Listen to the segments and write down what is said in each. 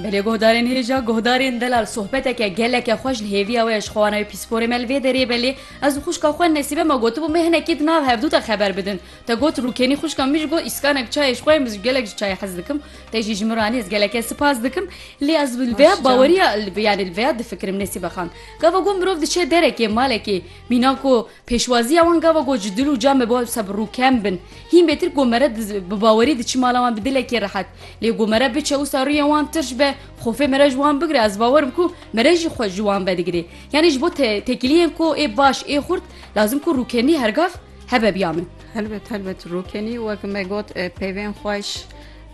Bi lê guhdarên hêja guhdarên Delal sohbeteke geleke xweş li hêviya we ye ji xwewana wê pîsporê me li vê derê be lê ez û xwişka xwe Nesîbe me gotibû me hinekî di nav hev dû de xeber bidin te got rûkenî xwişka min jî got îskanek çayê ji xwe ye min jî gelek ji çayê hez dikim te jî ji min re anî ez geleke sipas dikim lê ez li vêya baweriya yanî li vêya difikirim Nesîbe xan gava ku mirov diçe derekê malekê mîna ku Pêşwaziya wan gava got ji dil û can be baz bi rû kem bin. Hîn bêtir ku mere bi bawerî diçi mala wan bi dilekî rehet. Lê ku mere biçe wisa rûyên wan tirş be, xofê mere ji wan bigire ez bawer im ku mere jî xwe ji wan vedigirê. Yanî ji bo tekiliyên ku ê baş ê xurt lazim ku rûkenî hergav hebe biya min. Helbet helbet rûkenî wek me got peyvên xweş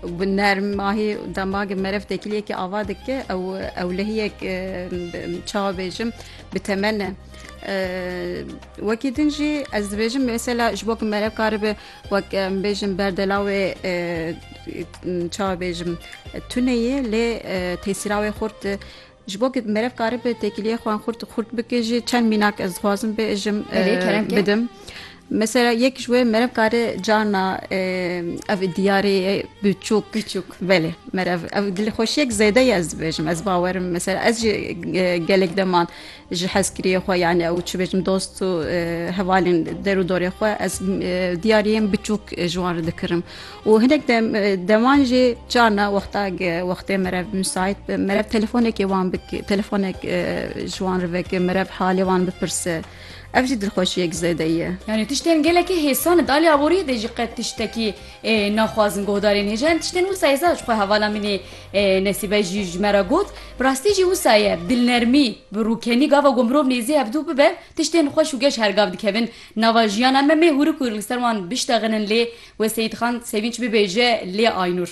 bi nermahî demagê mere tekiliyekî ava dike ew ewlehiyek çawa bêjim bi temel ne. Wekî din jî ez dibêjim mesela ji bo ku merev karibe wek em bêjin berdela wê çabêjim tuneyê lê tesîra wê xurt ji bo merev karibe têkiliyê xwan xurt xurt bike jî çend mînak ez dixwazim bêjim bidim. Mesela yek ji wê merev kare carna ev diyarê biçûk biçûk belê merev ev dilxweşiyek zêde ye ez dibêjim ez bawerim mesela ez jî gelek deman ji hezkiriyê xwe yanî ew çi bêjim dost û hevalên der û dorê xwe ez diyariyên biçûk ji wan re dikirim û hinek dem deman jî carna wexta wextê merev misait bi merev telefonekê wan bik telefonek ji wan re veke merev halê wan bipirse. Ev jî dilxweşiyek zêde ye. Yanî tiştên gelekî hêsan in. Di alî aboriyê de jî qet tiştekî naxwazin guhdarên hêja in. Tiştên wisa ye zad ji xwe hevala min ê Nesîbe jî ji me re got. Bi rastî jî wisa ye dilnermî bi rûkenî gava ku mirov nêzî hev dû bibe tiştên xweş û geş her gav dikevin nava jiyana me. Mê hûrik hûrik li ser wan biştexînin lê wê Seyîdxan Sevînç bibêje lê Aynûr.